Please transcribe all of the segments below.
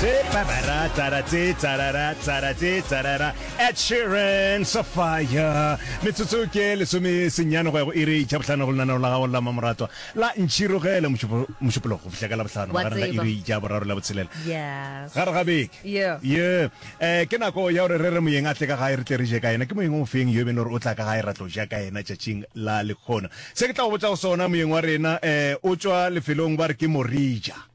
Tsara, tsara, tse, tsarara, tsara, tse, tsarara. Ed Sheeran, Safaya. Metsotso ke lesome senyane go ya go iri tša bohlano go lenaneo la gago la mamoratwa la ntšhirogele mošupo- mošupologo go fihla ka la bohlano Wa magareng ga tseba. iri tša boraro le botshelela Yes. gare ga beke Yeah. ye um ke nako ya gore re re moyeng a tle ka gae re tle re je ka yena ke moyeng o feng yo e beng le gore o tla ka gae ra tlo ja ka yena tšatšing la lekgono se ke tla go botsa go sona moyeng wa rena um o tswa lefelong ba re ke morija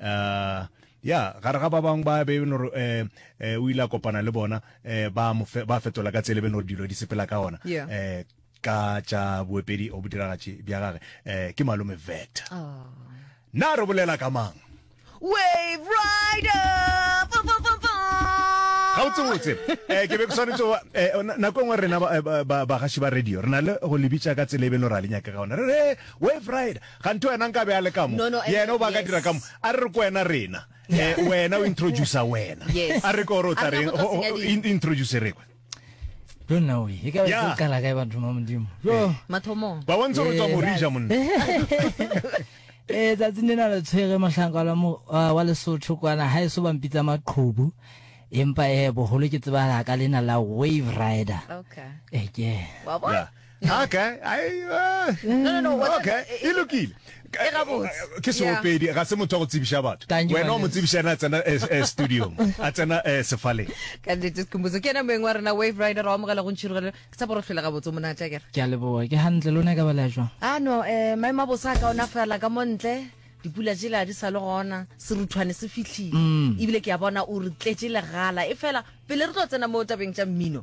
uh, ya gare ga ba bangwe ba be e nore um o ile a kopana le bona um ba ba fetola ka tsele be nore dilo di sepela ka ona um ka tša boepedi o bodiragatši bja gage um ke malome veta oh. na re bolela ka mang wave rider gabotsebotse um ke be ke tshwanetse eh, nako e nngwe rena bagaši ba radio re na le go lebitsa ka tsela e beno ra le nyaka ka ona re re wave rider Kganthe wena nka be a le ka mo. No, no, Yena o ba ka yes. dira ka mo. A re re ko wena rena. Eh, wena o introduce wena. Yes. A re ko re o tla A re reng? go tlo Ho- ho- senya di- in- Introduce re kwa. Yo nna oe, e ka be Yeah. se kala kae batho ba modimo. Yo. Mathomong. Ba bontse gore tswa Eh, morija monna. Eh, tsatsing lena le tshwere mohlanka wa la mo- wa wa lesotho kwana ga e so bampitsa maqhubu empa eh boholo ke tsebahala ka lena la wave rider Okay. eke Wa bona? Yeah. okay ai uh, no no no what's okay e eh, lokile eh, eh, ke seopedi ga se motho wa go tsebiša batho wena o mo tsebiša ena a tsena studio a tsena sefaleng ka nnete sekhomotso ke ena moeng wa rena wave rider wa amogela go ntšhirogelo ke sa boro tlhola gabotse monatla kere ke a leboa ke gantle lone ka bala jwa a ah, no um maemo a bosa ka ona fela ka mo ntle dipula jela di sa le gona seruthwane se fitlhile mm. ebile ke a bona o re tletse legala e fela pele re tlo tsena mo tabeng tša mmino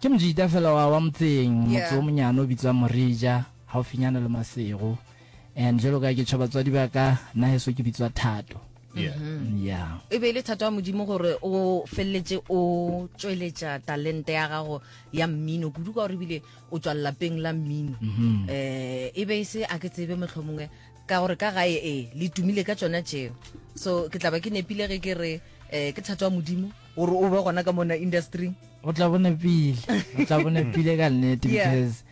Ke mojita fela wa wa motseng, motse Yeah. o monyane o bitswang Morija, haufinyana le Masego. And jwalo ka ke tjho batswadi ba ka, nna heso ke bitswa Thato. Yeah. Yeah. e be e le thato ya modimo gore o feleletse o tsweletša talente ya gago ya mmino kudu ka gore ebile o tswa lelapeng la mmino um e be e se a ke tsebe mohlomongwe ka gore ka gae ee le tumile ka tsona tšeo so ke tla ba ke nepile ge ke re um ke thato ya modimo gore o be gona ka mona industry o tla bona pile o tla bona pile ka nnete because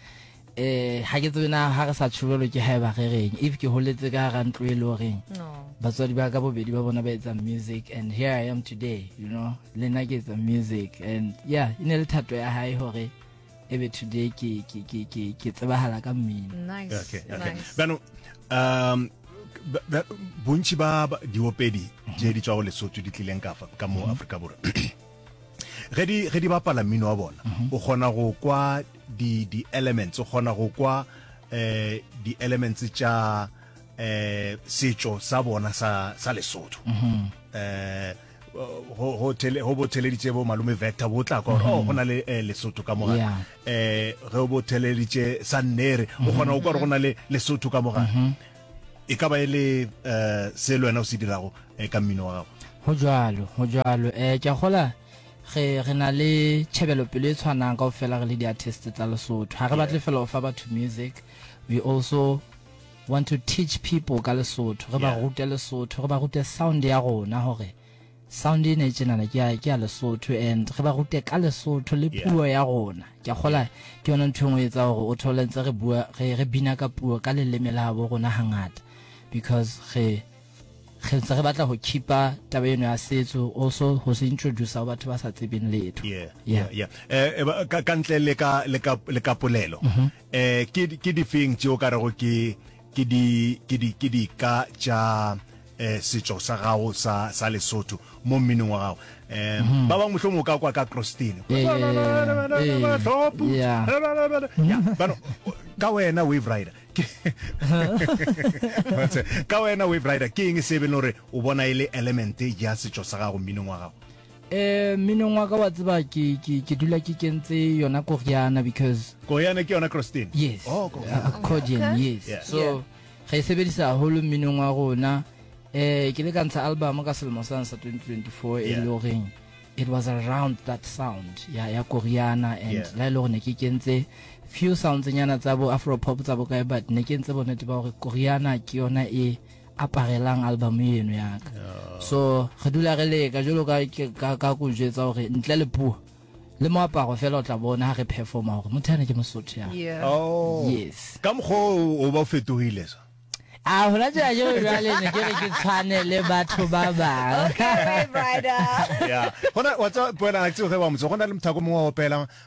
eh ha ke tsebe na ha re sa tshubelo ke haeba re reng if ke holetse ka ga ntlo e le goreng batswadi ba ka bobedi ba bona ba etsa music and here i am today you know le nna ke etsa music and yeah e ne le thato ya hae gore ebe today ke ke ke ke ke tsebahala ka mmino nice okay okay nice. bano um bontši ba diopedi je di tswa go lesotho di tlileng ka fa ka mo mhm. Afrika borwa ge di ge di bapala mmino wa bona mhm. o kgona go kwa di di elements o kgona go kwa eh di elements tša eh setšo sa bona sa sa lesotho mhm. eh go go tele go bo theleditse bo malume vector bo tla kwa oh go na le eh, lesotho ka moga Yeah. eh ge bo theleditse sa nnere o kgona go kwa re go na le lesotho ka moga e ka ba e le eh se le wena o se dirago eh, ka mmino wa gago go jalo go jalo um ke a gola ge re na le tšhebelopelo e tshwanang kao fela re le di-artist tsa lesotho ga re batle fela go fa batho music we also Want to teach people ka lesotho re ba Yeah. rute lesotho re ba rute sound ya rona gore sound e ne tsenana ke ya- ke ya lesotho and re ba rute ka lesotho le Yeah. puo ya rona ke a kgola ke yona ntho e nngwe e etsa gore o thole ntse re bua re re bina ka puo ka leleme la bo rona hangata because re re ntse re batla go keepa taba eno ya setso also go se introduce go batho ba sa tsebeng letho yeah, yeah. yeah, yeah. Eh, eh, ba- ka ka ntle le ka le ka le ka polelo Ee, ke, ke difeng tše o ka rego ke, ke di, ke di, ke dika tša eh, setšo sa gago sa, sa Lesotho mo mminong wa gago? Eh, ba bangwe mohlomong o ka kwa ka Krostini. Yeah, yeah, yeah, yeah, yeah. Bahloputsi. Yeah. Yeah, bano, ka wena Wave Rider ke Batse, ka wena Wave Rider ke eng se e beng gore o bona e le element ya setšo sa gago mminong wa gago? Eh, mminong wa ka wa tseba ke ke ke dula ke kentse yona koriana because Koyana ke yona Christine. yes Oh, ko- uh, accordion Okay. yes Yeah. so Yeah. re e sebedisa haholo mminong wa rona eh ke le ka ntsha album ka selemo sane sa 2024 e Yeah. le goreng it was around that sound ya ya koriana and Yeah. la e le gore ne ke kentse few sounds nyana tsa bo afro pop tsa bo kae but ne ke ntse bonnete ba gore koriana ke yona e aparelang album eno ya ka so re dula re leka jalo ka ka ka go jetsa gore ntle le puo le moaparo fela o tla bona ha re performa gore motho ane ke mosotho ya Yeah. oh Yes. ka mokgwa o o ba o fetogile so a hona tjena ke re jwale ne ke re ke tshwane le batho ba bang Okay, Ray Brider. ya gona wa tsa poela a tseo ge wa motse go na le mothako mongwe wa opela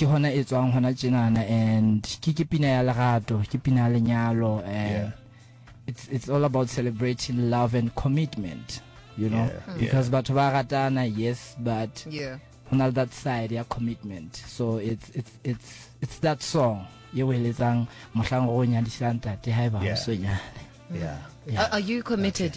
ke hona e tswang hona tjenana and ke ke pina ya lerato ke pina ya lenyalo and yeah. it's, it's all about celebrating love and commitment you know yeah. because yeah. batho ba ratana yes but yeah. hona that side ya commitment so it's, it's, it's, it's that song ye o eletsang mohlang go nyadisang tate ga e ba o senyane yeah. yeah. Are, are you committed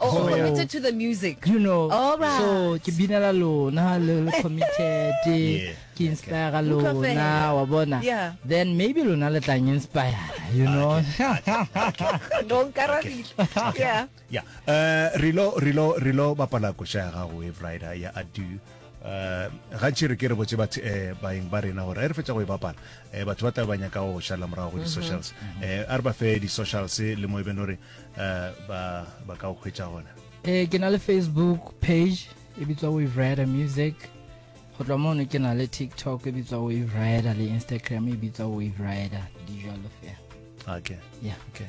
Oh, So, yeah. committed to the music. you know All right. so ke binela lona le le committed Yeah. ke inspire Utlwa lona fela. wa bona Yeah. then maybe lona le tlang inspire you know No nkarabile. Yeah. ya uh, relo relo relo bapala koša ya gago wave rider ya adu Uh, gantši re ke re botse batho eh, baeng ba rena gore a re fetsa go e bapala eh, batho ba tla ba nyaka go šala morago go di-socials eh, a re ba fe di-socials le mo e beng gore uh, ba, ba ka o hwetša gona e ke na le facebook page e bitswa wave rider music go tloa mono ke na le tiktok e bitswa wave rider le instagram e bitswa wave rider di jalo fela okay yeah okay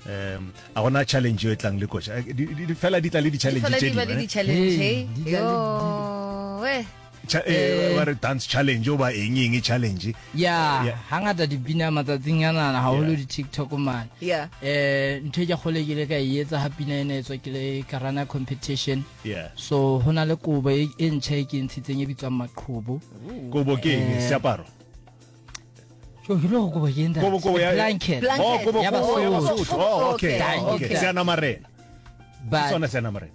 um a gona challenge yo e tlang le koša eh, fela di tla le di-challenge tse dingwe eh? Cha, eh, Eh. ba re dance challenge o ba eng eng challenge ya Yeah. ga ngata dipina matsatsing a nana gagolo Yeah. di-tiktok mane Yeah. eh ntho e ke kgole ke ile ka e etsa ga pina e ne e tswa ke le karana competition yeah so go na le kobo e e ntšha e ke e ntshitseng e bitswang maqhobo kobo ke eng Eh. seaparo so ke ile go kobo ke kobo kobo ya blanket Blanket. oh kobo Ya kobo ya Basotho. basotho oh okay Ka- okay ka- seanamarena ke sona but seanamarena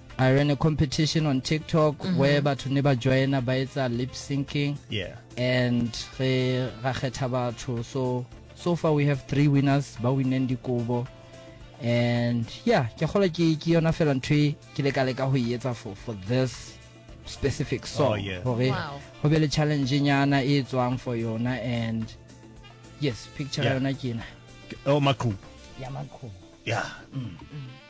I ran a competition on TikTok mm -hmm. where batho ne ba joina ba etsa lip syncing. Yeah. And re ra khetha batho so so far we have three winners ba winneng dikobo and yeah ke kgola ke ke yona fela ntho e ke leka leka go e etsa for for this specific song oh, yeah. gore wow. go be le challenge nyana e tswang for yona and yes picture yeah. yona ke na oh makhubu yeah makhubu yeah mm. Mm.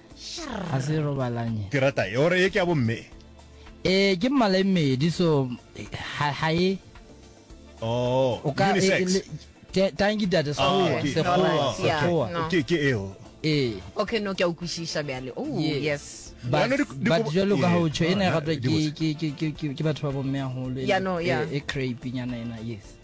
ga se robalanye ke rata e ore e ke a bomme ee ke mmala e mmedi so ga e oh unisex tanki tate sekgowa sekgowa sekgowa ke ke eo ee okay no ke a ukwishisha bjale oh yes but jalo ka go tsho e ne gape ke batho ba bomme golo e crepe nyana ena yes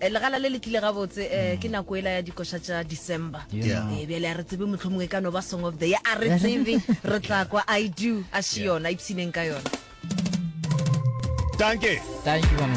Eh, legala le le tlile gabotse eh, ke nako ela ya dikoša tša december Yeah. Eh, bjale a re tsebe mohlomongwe ka no ba song of the year a re tsebe re tla kwa i do a še yona ipshineng ka yona Danke. Thank you, Mama.